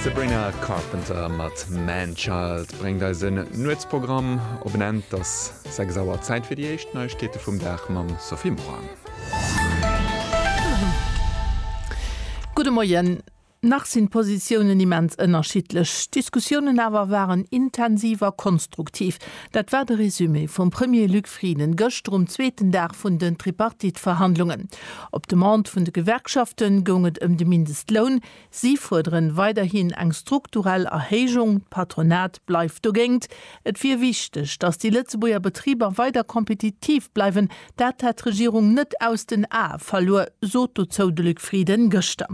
D'Sabrina Carpenter mat Man Child bréngt eis en Nuetsprogramm op en Enn. 't ass 6 Auer, Zäit fir déi éischt Neiegkeete vum Dag mam Sophie Morang. Gudde Moien. Nach sinn d'Positiounen immens ënnerschiddlech, d'Diskussiounen awer waren intensiv a konstruktiv. Dat war de Resumé vum Premier Luc Frieden gëschter um zweeten Dag vun den Tripartite-Verhandlungen. Op Demande vun de Gewerkschafte goung et ëm de Mindestloun. Si fuerderen weiderhin eng strukturell Erhéijung. D'Patronat bleift dogéint. Et wier wichteg, datt déi Lëtzebuerger Betriber weider kompetitiv bleiwen. Dat hätt d'Regierung net aus den Ae verluer, sot dozou de Luc Frieden gëschter.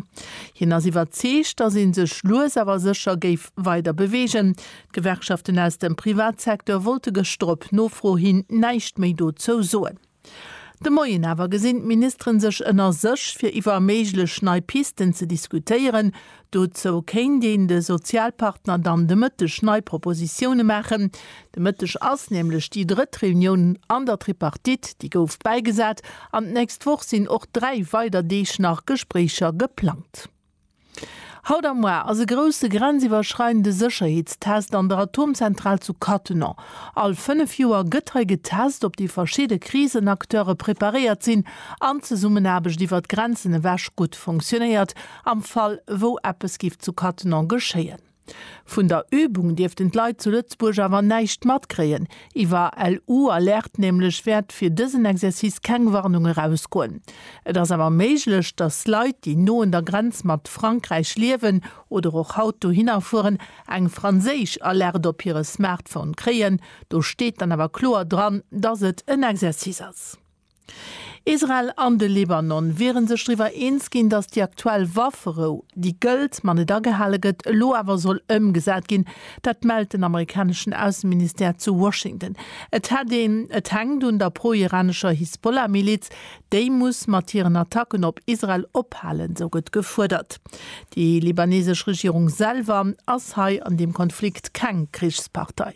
Hien ass iwwerzeegt, datt ee sech lues awer sécher géif weider beweegen. D'Gewerkschaften aus dem Privatsecteur wollte gëschter op Nofro hin näischt méi dozou soen. De Moien awer gesinn d'Ministeren sech ënner sech, fir iwwer méiglech nei Pisten ze diskutéieren. Dozou kéint een de Sozialpartner dann de Mëtteg nei Propositioune maachen. De Mëtteg ass nämlech déi drëtt Reunioun an der Tripartite, déi gouf bäigesat, an d'nächst Woch sinn och dräi weider Deeg nach Gespréicher geplangt. Haut am Mois ass e grousse grenziwwerschreidende Sécherheetstest an der Atomzentral zu Cattenom. All fënnef Joer gëtt hei getest, ob déi verschidde Krisenacteure preparéiert sinn an d'Zesummenaarbecht iwwer d'Grenzen ewech gutt funktionéiert, am Fall wou eppes giff zu Cattenom geschéien. Vun der Übung dierften d'Leit zu Lëtzebuerg awer näischt matkréien. Iwwer LU Alerte nämlech wäert fir dësen Exercice keng Warnung erausgoen. Et ass awer méiglech, dass Leit, déi no un der Grenz mat Frankräich liewen oder och haut dohinner fueren, eng franséisch Alerte op hire Smartphone kréien. Do steet dann awer kloer dran, dass et en Exercice ass. Israel an de Libanon wiere sech driwwer eens ginn, datt déi aktuell Wafferou, déi gëllt, ma net agehale gëtt, elo awer soll ëmgesat ginn. Dat mellt den amerikaneschen Ausseministère zu Washington. Et hätt een, et hänkt un der pro-iranescher Hisbollah-Miliz. Déi muss mat hiren Attacken op Israel ophalen, sou gëtt gefuerdert. Déi libanesesch Regierung selwer ass hei an deem Konflikt keng Krichspartei.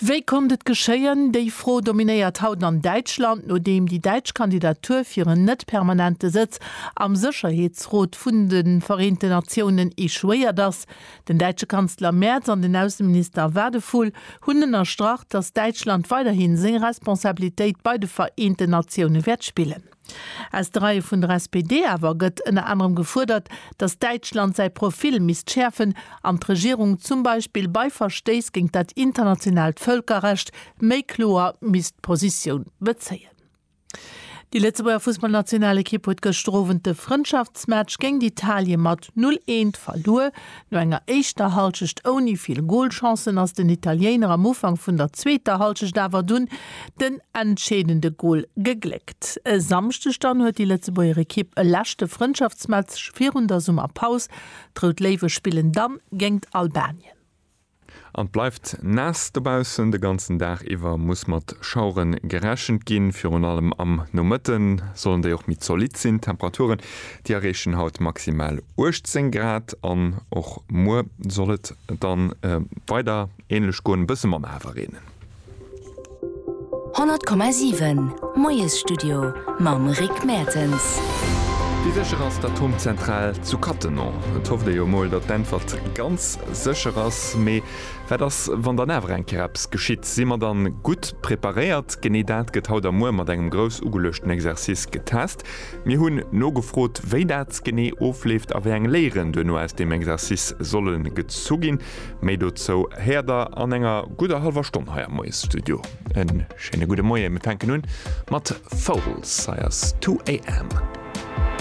Wéi konnt et geschéien? Déi Fro dominéiert haut an Däitschland, nodeem déi däitsch Kandidatur fir en net permanente Sëtz am Sécherheetsrot vun de Vereenten Natiounen echouéiert ass. Den däitsche Kanzler Merz an den Ausseminister Wadephul hunn ënnerstrach, datt Däitschland weiderhi seng Responsabilitéit bei de Vereenten Natioune wäert spillen. Aus de Reie vun der SPD awer gëtt ënner anerem gefuerdert, datt Däitschland säi Profil misst schäerfen an d'Regierung zum Beispill bei Verstéiss géint dat internationaalt Vëlkerrecht méi kloer misst Positioun bezéien. Déi Lëtzebuerger Fussballnationalekipp huet gëschter Owend de Frëndschaftsmatch géint Italien mat 0, 1 verluer. No enger éischter Halschecht ouni vill Golchancen ass den Italiéiner am Ufank vun der zweeter Halschecht awer dunn den entscheedende Gol gegléckt. E Samschdeg dann huet déi Lëtzebuerger Ekipp e leschte Frëndschaftsmatch virun der Summerpaus. D'Rout Léiwe spillen dann géingt Albanien. An et bleift naass dobaussen. De ganzen Dag iwwer muss mat Schauere gerechent ginn. Virun allem am Nomëtte sollen déi och méi zolitt sinn. D'Temperaturen, déi erreechen haut maximal 18 Grad an och muer soll et dann weider änlech goen, e bësse manner awer reenen. 100,7 Moiesstudio mam Rick Mertens. Wéi sécher ass d'Atomzentral zu Cattenom? Et hofft ee jo mol, datt d'Äntwert ganz sécher ass. Mee wat ass, wann dann awer eng Kéier eppes geschitt? Si mer dann gutt preparéiert? Genee dat gëtt haut a muer mat engem grouss ugeluechten Exercice getest. Mir hunn nogefrot, wéi dat genee ofleeft a wéi eng Léieren duerno aus deem Exercice solle gezu ginn. Méi dozou héiert der an enger gudder hallwer Stonn hei am Moiesstudio. E schéine gudde Moie, mir fänken un mat Foals, hei ass Two AM.